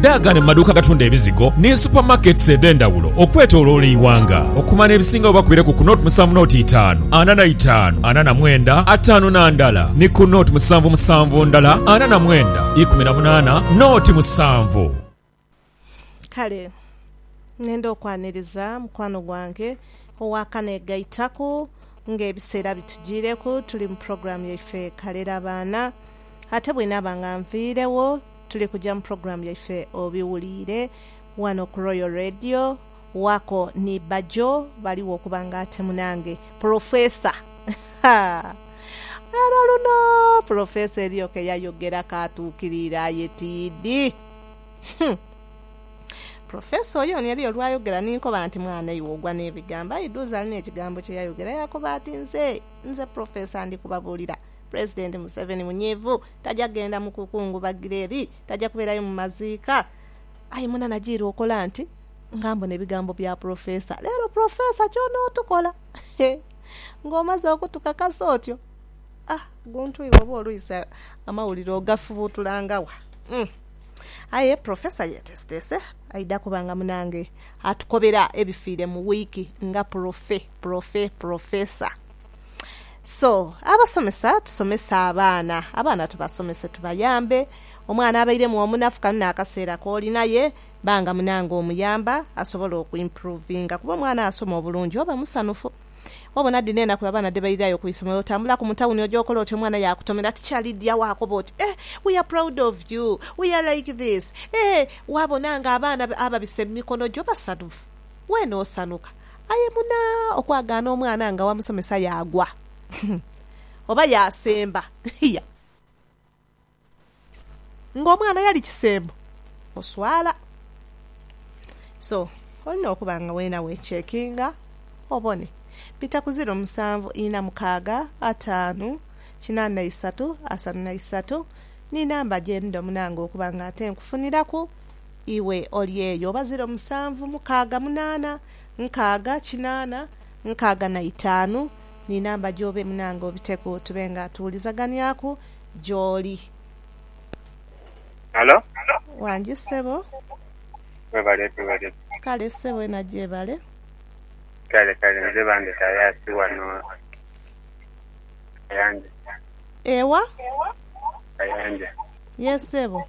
Daagane mu maduuka agatunda ebizigo ni super markets edhendawulo okwetoloola eighanga. Okumana ebisinga wo bakubire ku ku nought musanvu nought itaanu ana na itaanu ana na mwenda ataanu na ndala ni ku nought musanvu musanvu ndala ana na mwenda ikumi na munaana nought musanvu. Kale nenda okwaniriza mukwano gwange owa kanegaitaku nga ebiseera bitujiireku tuli mu program yaife Kalera Baana ate bwenaaba nga nviirewo tuli kuja mu program yaife obiwuliire wano ku Royal Radio wako ni Bajjo baligho okuba nga ate munange Professor haa era luno Professor eriyo keyayogera katukiriire aye tiidi humm Professor oyoni eriyo lwayogera ninkoba nti mwana iwe ogwa nebigambo aidhuuza alina ekigambo kyeyayogera yakoba ati nze nze Professor ndikubabuulira Pulezidenti Museveni munyiivu, taja genda mu kukungubagira eri, taja kubeerayo mu maziika. Aye mwena najiirwa okola nti nga mbona ebigambo bya Pulofeesa. Leero Pulofeesa ky'onootukola ng'omaze okutukakasa otyo? Ah! Guntu iwe oba olwise amawulire ogafubuutulanga wa? Uhm! Aye Pulofeesa yeeteeseteese aidha kuba nga munange atukobera ebifiire mu wiiki nga pulofe, pulofe, pulofeesa. So abasomesa tusomese abaana, abaana tubasomese tubayambe. Omwana abairemu omunafu kano n'akaseera k'oli naye ba nga munange omuyamba asobole okwimpuruvinga kuba omwana asoma obulungi oba musanhufu. Obona dhino enaku abaana dhe bairayo ku isomero otambulaku mu tawuni oja okola oti omwana yaakutomera tikyali dhi agho akoba oti eh we are proud of you, we are like this, eh. Waabona ng'abaana ababisa emikono gyo basanhufu, weena osanhuka. Aye muna okwagaana omwana nga wamusomesa yaagwa oba yaasemba hia! Nga omwana yali kisembo oswala. So olina okuba nga wena wechekinga obone. Bita ku ziro musanvu ina mukaaga ataanu kina na isatu asanu na isatu ni namba gyendidho munange okuba nga ate nkufuniraku Iwe oli eyo oba ziro musanvu mukaaga munaana nkaaga kinaana nkaaga na itaanu ni namba gyo obe munange obiteku tube nga tuwulizaganiaku gyoli. Halo. Wangi sebo. Webale tuwereza. Kale sebo ena gyebale. Kale kale nze bandeta yasi wano kayanja. Ewa? Kayanja. Yee sebo.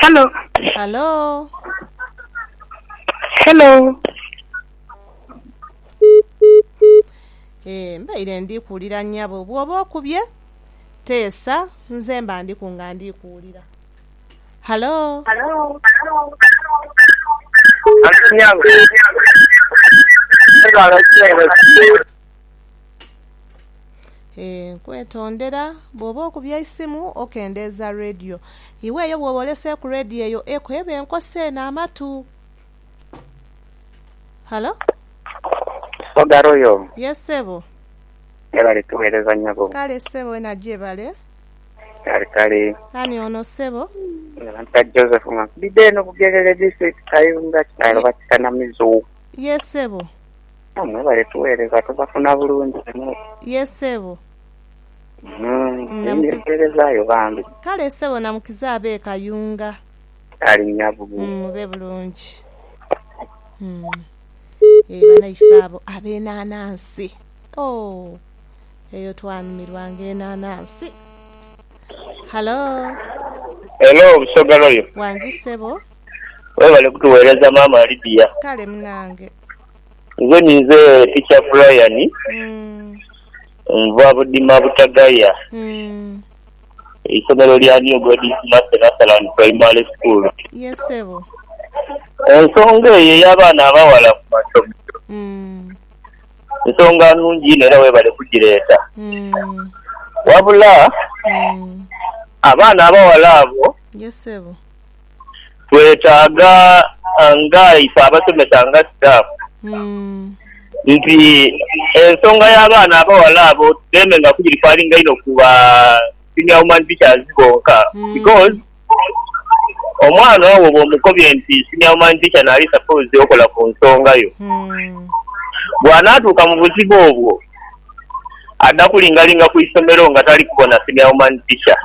Hello. Halo. Hello. Ee, mbaire ndi kuwulira nnyabo. Bw'oba okubye, teesa, nze mba ndiku nga ndi kuwulira. Halo. Halo, nnyabo. Mwebale kutuweereza. Nkwetondera bw'oba okubye eisimu okendeeza rediyo. Iwe eyo bw'oba oleseeku rediyo eyo eku eba enkosa eno amatu. Halo? Oga Royal. Ye ssebo. Mwebale tuweereza nyabo. Kale ssebo wena gyebale. Kale kale. Ani ono ssebo? Nze Joseph nga nkubidde eno Bugerere district Kayunga kyalo Bakikanamizo. Ye ssebo. Mwebale tughereza tubafuna bulungi inho. Ye sebo. Ndibyeterezayo bambi. Kale sebo namukiza abe kayunga. Ali nyabu. Mube bulungi. Eeh banaife abo abenanansi ooh eyo twanumirwa nga enanansi. Hallo. Hello busoga royal. Wangi sebo. Webale kutughereza maama Lydia. Kale munange. Nze ninze teacher Brian nva budima butagaya eisomero lya new God is mercy Nathaland primary school. Ensonga eyo eyabaana abawala kumasomero nsonga nungi inho era webale kujireta wabula abaana abawala abo twetaaga nga ife abasomesa nga staff nti ensonga ya baana abawala abo tudeme nga kugirifalinga inho ku ba senior woman teachers bonka because omwana owo bwomukobye nti senior woman teacher nali supposed okola ku nsonga yo bwanatuuka mu buzibu obwo adha kulingalinga ku isomero nga tali kubona senior woman teacher.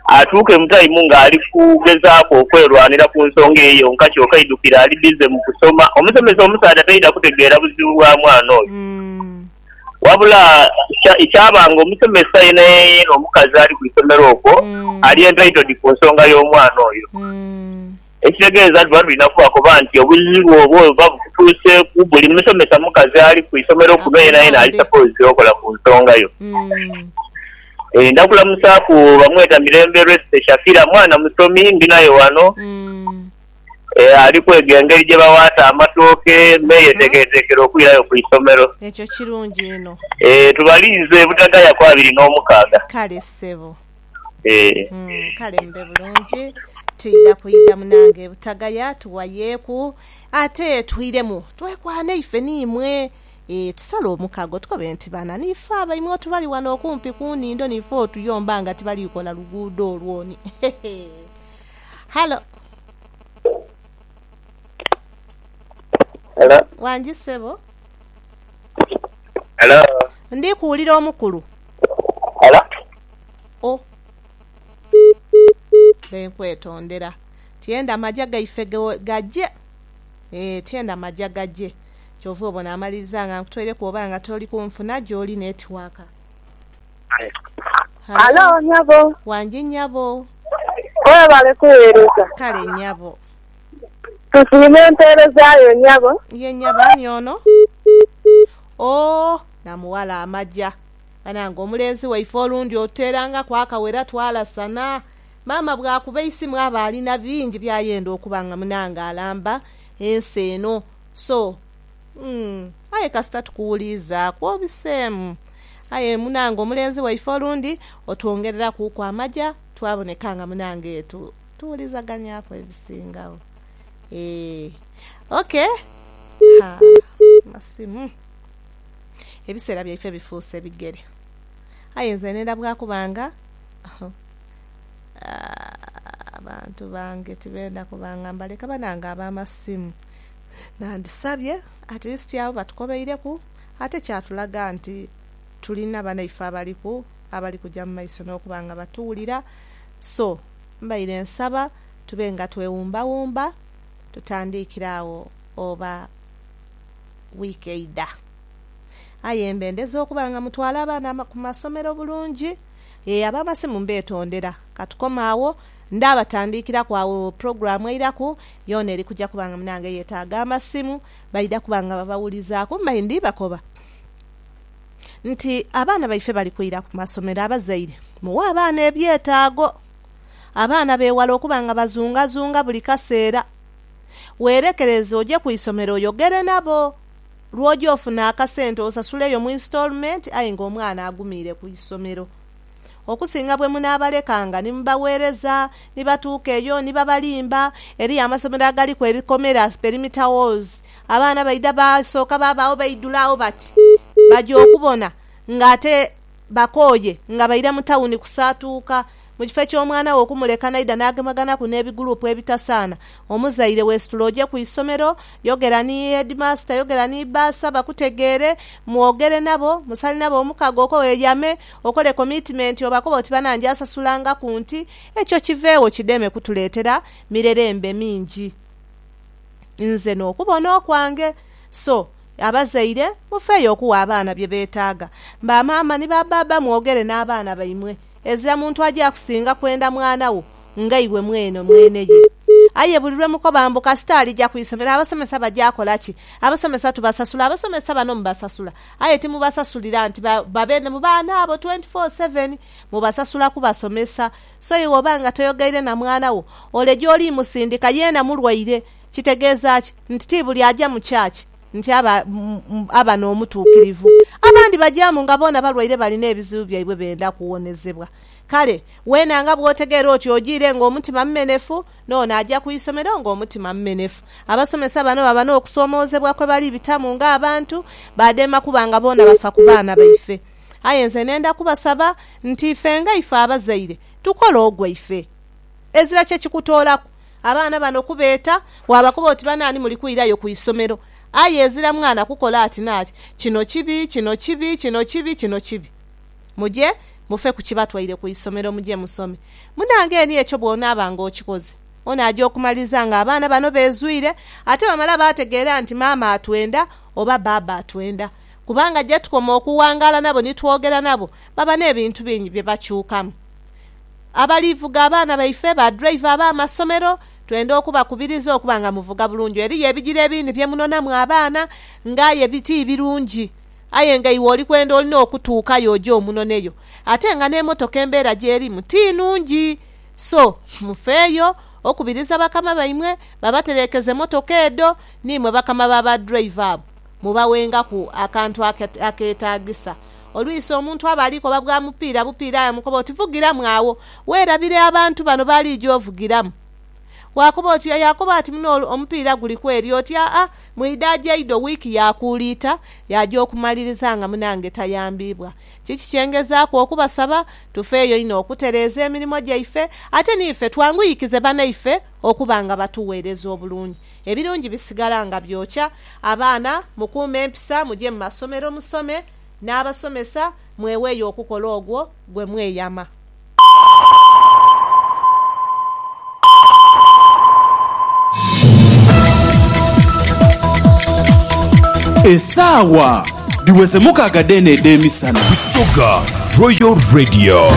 atuuke mu taimu nga ali kugezaaku okwerwanira ku nsonga eyo yonka kyoka aidukire ali bize mu kusoma. Omusomesa omusaadha taidha kutegeera buzibu bwa mwana oyo. Wabula kyaba nga omusomesa yenayena omukazi ali ku isomero okwo ali entitled ku nsonga y'omwana oyo. Ekitegeeza luba lulina kuba koba nti obuzibu obwo buba bukutuuseeku, buli musomesa mukazi ali ku isomero kuno yenayena ali sapoozi okola ku nsonga yo. Ndakulamusaaku bamweta Mirembe Resty Shakira, mwana musomi ndi naye wano. Ali kwega engeri gye bawaata amatooke me yeteekereteekera okwirayo ku isomero. Ekyo kirungi inho. Tubalinze butagaya ku abiri n'omukaaga. Kale ssebo. Kale mube bulungi. Twidha kwidha munange butagaya tughayeeku ate twiremu twekwane ife ni imwe ee tusale omukago tukobe nti bana ni ife abaimwe oti bali wano okumpi ku nhindo ni ife otuyomba nga tibali kola luguudo olwo ni hehe. Halo. Halo. Wangi sebo. Halo. Ndi kuwulira omukulu. Oh, mbe nkwetondera. Tyenda maja gaife gaje. Eeh, tyenda maja gaje. Kyova obona amaliriza nga nkutoireku oba nga toli kunfuna gyoli netiwaaka. Halo, wangi nyabo. Webale kuwereza. Kale nyabo. Tusiima empeereza yo nyabo. Ye nyabo, ani ono? Oh. naamughala amaja. Banange omulenzi waife olundi otuteerangaku akawera twalasana. Maama bw'akuba eisimu aba alina bingi by'ayenda okuba nga munange alamba ensi eno. So, umm aye kasita tukuwuliizaaku obiseemu. Aye munange omulenzi waife olundi otwongererakuuku amaja twaboneka nga munange tuwulizaganyaku ebisingagho. Eeh, ok. Haa amasimu. Ebiseera byaife bifuuse bigere. Aye nze nenda bwa kuba nga abantu bange tibenda kuba nga mbaleka. Banange ab'amasimu nandisabye at least agho batukobeireku ate kyatulaga nti tulina banaife abaliku, abali kuja mu maiso n'okuba nga batuwulira. So, mbaire nsaba tube nga twewumbawumba tutandiikire agho oba. wiiki eidha. Aye mbendeza okuba nga mutwala abaana ku masomero bulungi. Ee, ab'amasimu mbeetondera. Ka tukome agho. Ndaabatandiikiraku agho pulogulaamu eiraku, yoona eri kuja kuba nga munaange yeetaaga amasimu. Baidha kuba nga babawulizaaku. Mbaire ndibakoba nti abaana baife bali kwira ku masomero, abazaire muwe abaana ebyetaago. Abaana beewale okuba nga bazungazunga buli kaseera. Weerekereze oje ku isomero oyogere nabo. Lw'oja ofuna akasente osasuleyo mu instalment aye ng'omwana agumiire ku isomero. Okusinga bwe munaabalekanga ni mubagheereza, ni batuuka eyo ni babalimba. Eriyo amasomero agaliku ebikomera, perimeter walls, abaana baidha basooka baabagho baidhula agho bati baja okubona ng'ate bakooye nga baira mu tawuni kusaatuuka. Mu kifo eky'omwana we okumuleka n'aidha n'agemaganaku n'ebiguruupu ebitasaana, omuzaire weesitule oje ku isomero, yogera ni heedimaasita, yogera ni bbaasa bakutegeere, mwogere nabo, musale nabo omukago okwo weyame, okole komitimenti obakobe oti bana njaasasulangaku nti. Ekyo kiveegho kideme kutuleetera mirerembe mingi. Nze n'okubona okwange. So, abazaire mufeeyo okuwa abaana bye beetaaga. Ba maama ni ba bbaabba mwogere n'abaana baimwe. Ezira muntu aja kusinga kwenda mwana wo nga iwe mwene mwene ye. Aye buli lwe mukoba mbu kasita alija ku isomero abasomesa baja kola ki? Abasomesa tubasasula. Abasomesa bano mubasasula, aye timubasasulira nti babe mu baana abo twenti foo seveni. Mubasasula kubasomesa. So iwe oba nga toyogeire na mwana wo, ole gy'oli musindika, yeena mulwaire. Kitegeeza ki? Nti ti buli aja mu church. nti aba aba n'omutuukirivu. Abandi bagyamu nga boona balwaire balina ebizibu byaibwe benda kuwonezebwa. Kale, weena nga bw'otegeera otyo ojiire ng'omutima mumenefu, n'ono aja ku isomero ng'omutima mumenefu. Abasomesa bano baba n'okusoomoozebwa kwe bali bitamu ng'abantu, baadema kuba nga boona bafa ku baana baife. Aye nze nenda kubasaba nti ife nga ife abazaire, tukole ogwaife. Ezira kye kikutoolaku, Abaana bano kubeeta, waabakoba oti banaani muli kwirayo ku isomero, aye ezira mwana kukola ati n'ati, kino kibi, kino kibi, kino kibi, kino kibi. Muje mufe ku kibatwaire ku isomero muje musome. Munange eni ekyo bw'onaaba nga okikoze, onaaja okumaliriza nga abaana bano beezwire ate bamala baategeera nti maama atwenda oba bbaabba atwenda. Kubanga gye tukoma okuwangaala nabo ni twogera nabo, baba n'ebintu bingi bye bakyukamu. abalivuga abaana baife, ba driver ab'amasomero, twenda okubakubiriza okuba nga muvuga bulungi. Eriyo ebigiro ebindi bye munonamu abaana nga aye ti birungi, aye nga iwe oli kwenda olina okutuukayo oje omunoneyo. Ate nga n'emotoka embeera gy'erimu ti nungi. So, mufeeyo okubiriza bakama baimwe babatereekeze motoka edho, niimwe bakama ba ba driver abo. Mubawengaku akantu akeetaagisa. Olwisi omuntu aba ali koba bwa mupiira bupiira aye omukoba oti, Vugiramu agho, weerabire abantu bano b'aliija ovugiramu. Waakoba oti, Aye akoba ati muno omupiira guli ku eri, oti, Aa, mu idaajo eidho wiiki yaakuuliita yaaja okumaliriza nga munange tayambiibwa. Kiki kye ngezaaku okubasaba? Tufeeyo inho okutereeza emirimo gyaife, ate n'ife twanguyikize banaife okuba nga batuweereza obulungi. Ebirungi bisigala nga byokya. Abaana mukuume empisa, muje mu masomero musome n'abasomesa, mweweeyo okukola ogwo gwe mweyama. Esaawa dhiweze mukaaga dheene edh'emisana. Busoga Royal Radio.